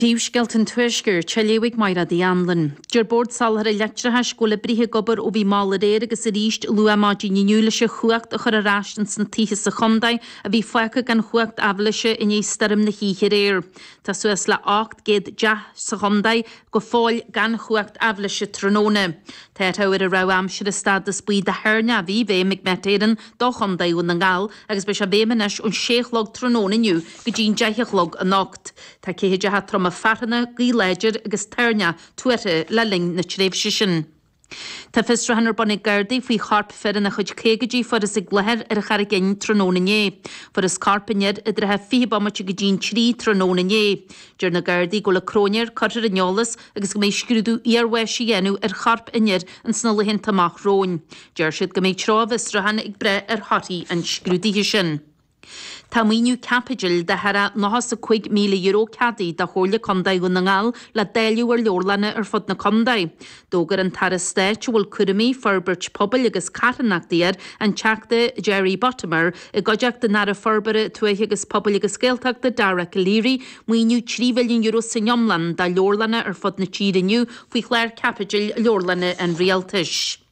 Príomhscéalta an Tuaiscirt, dá léamh ag Máire D. Anlon. Deir Bord Soláthair an Leictreachais go bhfuil oibrithe ag obair ó bhí mall aréir agus arís luath maidin inniu leis an chumhacht a chur ar ais ins na tithe sa chontae a bhí fágtha gan chumhacht aibhléise i ndiaidh stoirm na hoíche aréir. Tá suas le 800 teach sa chontae go fóill gan chumhacht aibhléise tráthnóna. Tá an dara rabhadh aimsire stádas buí de thoirneach i bhfeidhm ag Met Éireann do Chontae Dhún na nGall agus beidh sé i bhfeidhm anois ón sé a chlog tráthnóna inniu go dtí'n deich a chlog anocht. Tá ceathaideacha troma fearthainne, gaoth láidir agus toirneach tuartha le linn na tréimhse sin. Tá fiosrúchán ar bun ag Gardaí faoi chorp fir ina chuid caogaidí a fuarthas ag láthair ar an Charraigín tráthnóna inné. Fuarthas corp an fhir i dtrátha fiche bomaite go dtí an trí tráthnóna inné. Deir na Gardaí go bhfuil an cróinéir curtha ar an eolas agus go mbeidh scrúdú iarbháis á dhéanamh ar chorp an fhir ins na laethanta amach romhainn. Deir siad go mbeidh treo a bhfiosrúcháin ag brath ar thorthaí an scrúdaithe sin. Tá maoiniú caipitil de thar €95,000 ceadaithe do Chomhairle Contae Dhún na nGall le dáileadh ar leabharlanna ar fud na contae. D'fhógair an tAire Stáit a bhfuil cúraimí forbairt pobail agus carthanachtaí air, an Teachta Jerry Buttimer, i gcuideachta an Aire Forbartha Tuaithe agus Pobail agus Gaeltachta Dara Calleary, maoiniú €3 mhilliún san iomlán do leabharlanna ar fud na tíre inniu faoi Chlár Caipitil Leabharlanna an Rialtais.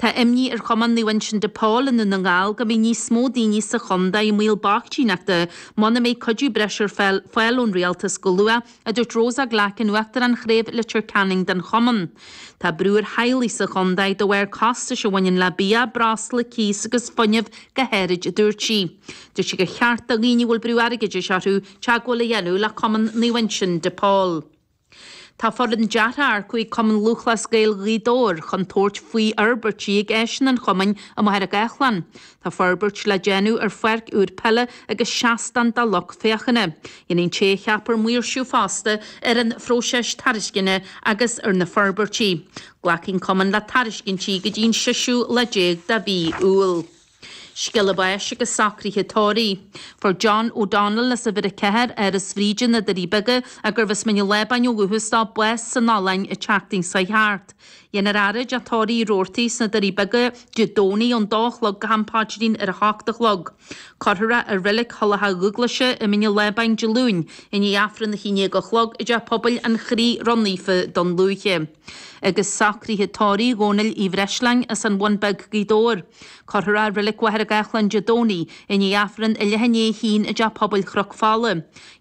Tá imní ar Chumann Naomh Uinseann de Pól i nDún na nGall go mbeidh níos mó daoine sa chontae i mbaol boichtíneachta muna mbeidh cuidiú breise ar fáil ón Rialtas go luath, a dúirt Rosa Glackin, Uachtarán Chraobh Leitir Ceanainn den Chumann. Tá brú ar theaghlaigh sa chontae de bharr costais a bhaineann le bia, breosla, cíos agus fuinneamh go háirid, a dúirt sí. Dúirt sí gur cheart do dhaoine a bhfuil brú airgeadais orthu teagmháil a dhéanamh le Cumann Naomh Uinseann de Pól. Tá foireann deartha á hearcú ag Cumann Lúthchleas Gael Ghaoth Dobhair chun tabhairt faoi fhorbairtí ag áiseanna an chumainn i Machaire Gathlán. Tá forbairt le déanamh ar pháirc úr peile agus seastán do lucht féachana. Dhéanfaidh an té a cheapfar maoirsiú fosta ar an phróiseas tairisceana agus ar na forbairtí. Glacfaidh an cumann le tairiscintí go dtí an seisiú lá déag de mhí Iúil. Scéala báis agus socraithe tórraimh. Fuair John O'Donnell as uimhir a ceathair, Áras Bhríde, Na Doirí Beaga, a gurbh as Mín an Lábáin ó dhúchas dó, bás san Ollainn an tseachtain seo thart. Dhéanfar é a fhaire i dTeach Tórraimh Roarty sna Doirí Beaga Dé Domhnaigh ón dó a chlog go ham paidrín ar a hocht a chlog. Cuirfear é i Reilig Thulach Dúghlaise i Mín an Lábáin Dé Luain i ndiaidh Aifreann a haon déag a chlog i dTeach Pobail an Chroí Ró-Naofa Dún Lúiche. agus socruithe tórraimh Dhónaill Uí Bhreisleáin as an Bhun Bheag, Gaoth Dobhair. Cuirfear é i Reilig Mhachaire Gathlán Dé Domhnaigh i ndiaidh Aifreann a leath i ndiaidh a haon i dTeach Pobail Chnoc Fola.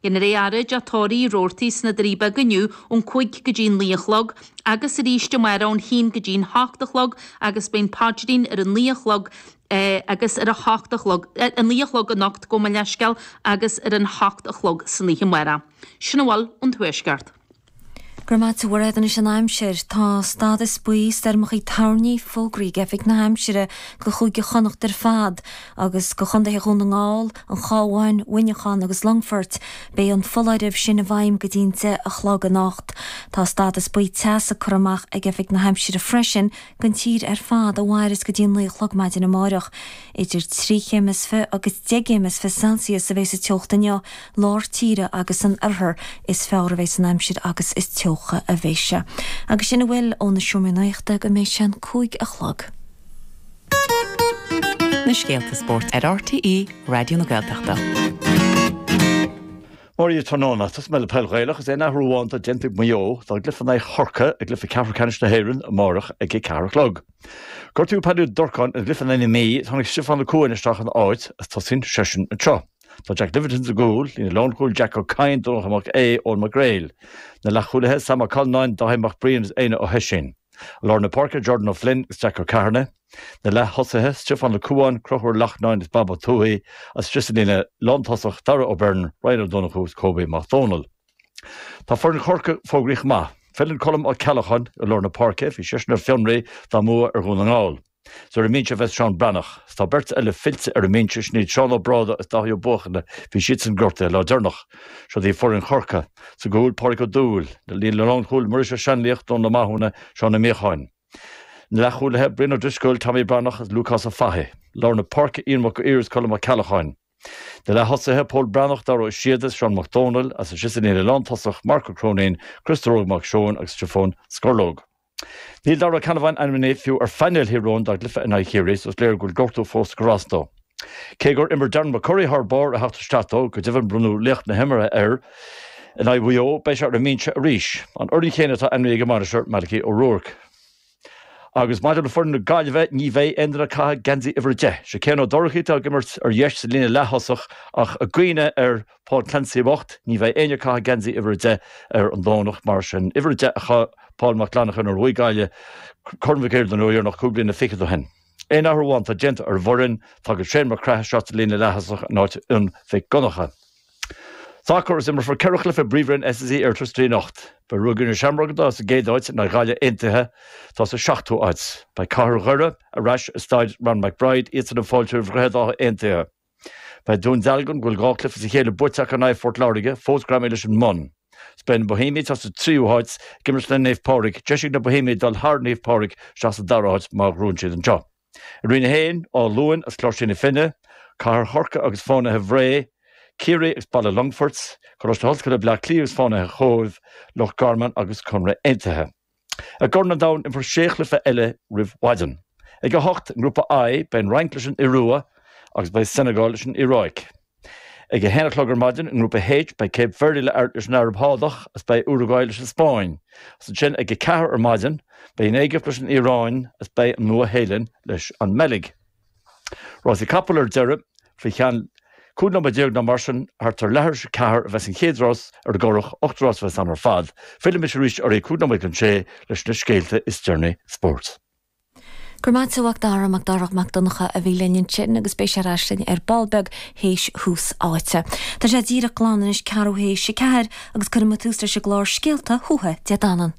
Déanfar é a fhaire i dTeach Tórraimh Roarty, sna Doirí Beaga inniu ón cúig go dtí an naoi a chlog agus arís amárach ón haon go dtí'n hocht a chlog agus beidh an paidrín ar a naoi a chlog agus ar a hocht a chlog, a naoi a chlog anocht gabh mo leithscéal, agus ar an hocht a chlog san oíche amárach. Sin a bhfuil ón Tuaisceart. Go raibh maith agat a Mhairéad. Anois an aimsir, tá stádas buí stoirmeacha toirní fógraithe ag Oifig na hAimsire do Chúige Chonnacht ar fad agus do Chontaetha Dhún na nGall, An Chábháin, Mhuineachán agus Longfoirt. Beidh an foláireamh sin i bhfeidhm go dtí an deich a chlog anocht. Tá stádas buí teasa curtha amach ag Oifig na hAimsire freisin don tír ar fad a mhaireas go dtí an 9 a chlog maidin amárach. Idir trí chéim is fiche agus deich gcéim is fiche Celsius a bheas an teocht inniu, lár tíre agus san oirthear is fearr a bheas an aimsir agus is teocha a bheidh sé. Agus sin a bhfuil ó na seomraí nuachta go mbeidh sé an cúig a chlog. Na scéalta spóirt ar RTÉ Raidió na Gaeltachta. Mora dhíbh tráthnóna, tosóidh mé le Peil Ghaelach, is aon athrú amháin atá déanta ag Maigh Eo dá gcluiche in aghaidh Chorcaí i gcluiche ceathrú ceannais na hÉireann amárach ag a ceathair a chlog. Gortaíodh Paddy Ó Durcáin ina gcluiche in aghaidh na Mí, tháinig Stiofán Ó Cuain isteach ina áit agus tosaíonn seisean anseo. Tá Jack Livingstone sa gcúl, líne lánchúil Jack Ó Cadhain, Donncha Mac Aodh, Eoghan Mac Gréil. Na leathchúlaithe, Sam Ó Callanáin, Dáithí Mac Briain agus Éanna Ó hOisín. I lár na páirce, Jordan Ó Floinn agus Jack Ó Ceithearnaigh, na leath-thosaithe, Stiofán Ó Cuain, Conchúr Ó Lachtnáin is Bob Ó Tuathaigh, is thíos sa líne lántosach, Darragh Ó Beirn, Ryan Ó Donnchú agus Kobe Mac Dónaill. Tá foireann Chorcaí fógraithe chomh maith. Filleann Colm Ó Ceallacháin i lár na páirce, bhí seisean ar fionraí dá mbua ar Dhún na nGall. Is ar an mbinse a bheidh Seán Breathnach, 's tá beirt eile fillte ar an mbinse, sin iad Seán Ó Bráda is Dáithí Ó Buachalla, bhí siadsan gortaithe an lá deireanach. Siod í foireann Chorcaí, sa gcúl, Pádraig Ó Dúill, líne lánchúil, Muiris Ó Seanlaoich, Dónal Ó Mathúna, Seán Ó Míocháin. Na leath-chúlaithe, Brian Ó Drisceoil, Tommy Breathnach is Lúcás Ó Fathaigh. Lár na páirce, Ian Mac Uidhir is Colm Ó Ceallacháin. Na leath-thosaithe, Pól Breathnach, Dara Ó Síoda is Seán Mac Dónaill, is thíos sa líne lántosach, Marc Ó Cróinín, Criostóir Óg Mac Seóin agus Stiofán Scorlóg. Níl Darragh Canavan ainmnithe fiú ar phainéal Thír Eoghain dá gcluiche in aghaidh Chiarraí so is léir go bhfuil gortú fós ag cur as dó. Cé gur imir Darren McCurry thar barr ar theacht isteach dó, go deimhin bronnadh laoch na himeartha air in aghaidh Mhaigh Eo, beidh sé ar an mbinse arís. An fhoireann chéanna atá ainmnithe ag an mbainisteoir, Malachy O'Rourke. Agus maidir le foireann na Gaillimhe, ní bheidh aon duine ag caitheamh geansaí uimhir a deich. Sé Cian Ó Dorchaí atá ag imirt ar dheis sa líne leaththosach ach i gcuimhne ar Paul Clancy bocht, ní bheidh éinne ag caitheamh geansaí uimhir a deich ar an Domhnach, mar sin. Uimhir a deich a chaith Paul Mac Fhlannachain nuair a bhuaigh Gaillimh Corn Mhic Uidhir don uair dheireanach cúig bliana fichead ó shin. Aon athrú amháin atá déanta ar an bhfoireann, tagann Shane Mac Craith isteach sa líne leath-thosach in áit Fhionn Mhic Dhonnacha. Sacar, is imreofar ceithre chluiche i bpríomhroinn SSE Airtricity anocht. Beidh Ruagairí na Seamróg, atá sa gcéad áit in aghaidh Ghaillimh Aontaithe, atá sa seachtú háit. Beidh Cathair Dhoire ar ais i Staid Ryan McBride, iadsan ag fáiltiú roimh Dhroichead Átha Aontaithe. Beidh Dún Dealgan, a bhfuil dhá chluiche as a chéile buaite acu in aghaidh Phort Láirge, fós greamaithe leis an mbun. Is beidh na Bohemiaigh atá sa tríú háit ag imirt le Naomh Pádraig, deis ag na Bohemiaigh dul thar Naomh Pádraig isteach sa dara háit má ghnóthaíonn siad anseo. I Roinn 1, Áth Luain is Cláirsigh na Finne, Cathair Chorcaí agus Fánaithe Bhré, Ciarraí agus Baile Longfoirt, Coláiste Ollscoile Bhleá Cliath agus Fánaithe Chóibh, Loch Garman agus Conradh Aontaithe. I gCorn an Domhain, imreofar sé chluiche eile roimh mhaidin. Ag a hocht, i nGrúpa I, beidh an Fhrainc leis an Iorua agus beidh Senegal leis an Iaráic. Ag a haon a chlog ar maidin, i nGrúpa H, beidh Cape Verde leis an Araib Shádach agus beidh Uruguay leis an Spáinn. Agus ansin, ag a ceathair ar maidin, beidh an Éigipt leis an Iaráin agus beidh an Nua-Shéalainn leis an mBeilg. Rásaí capall ar deireadh, faoi cheann 15 nóiméad nó mar sin, thart ar leathuair théis a ceathair a bheas an chéad rás ar an gCurrach, ocht rás a bheas ann ar fad. Fillfidh mise arís ar a 5 nóiméad chun a 6 leis na scéalta is deireanaí spóirt. Go raibh maith agat a Mhac Dara, Mac Dara Mac Donncha a bhí linn ansin agus beidh sé ar ais linn ar ball beag théis Thús Áite. Tá sé díreach glan anois ceathrú théis a ceathair agus cuirfimid tús leis an gclár Scéalta Thuatha Dé Danann.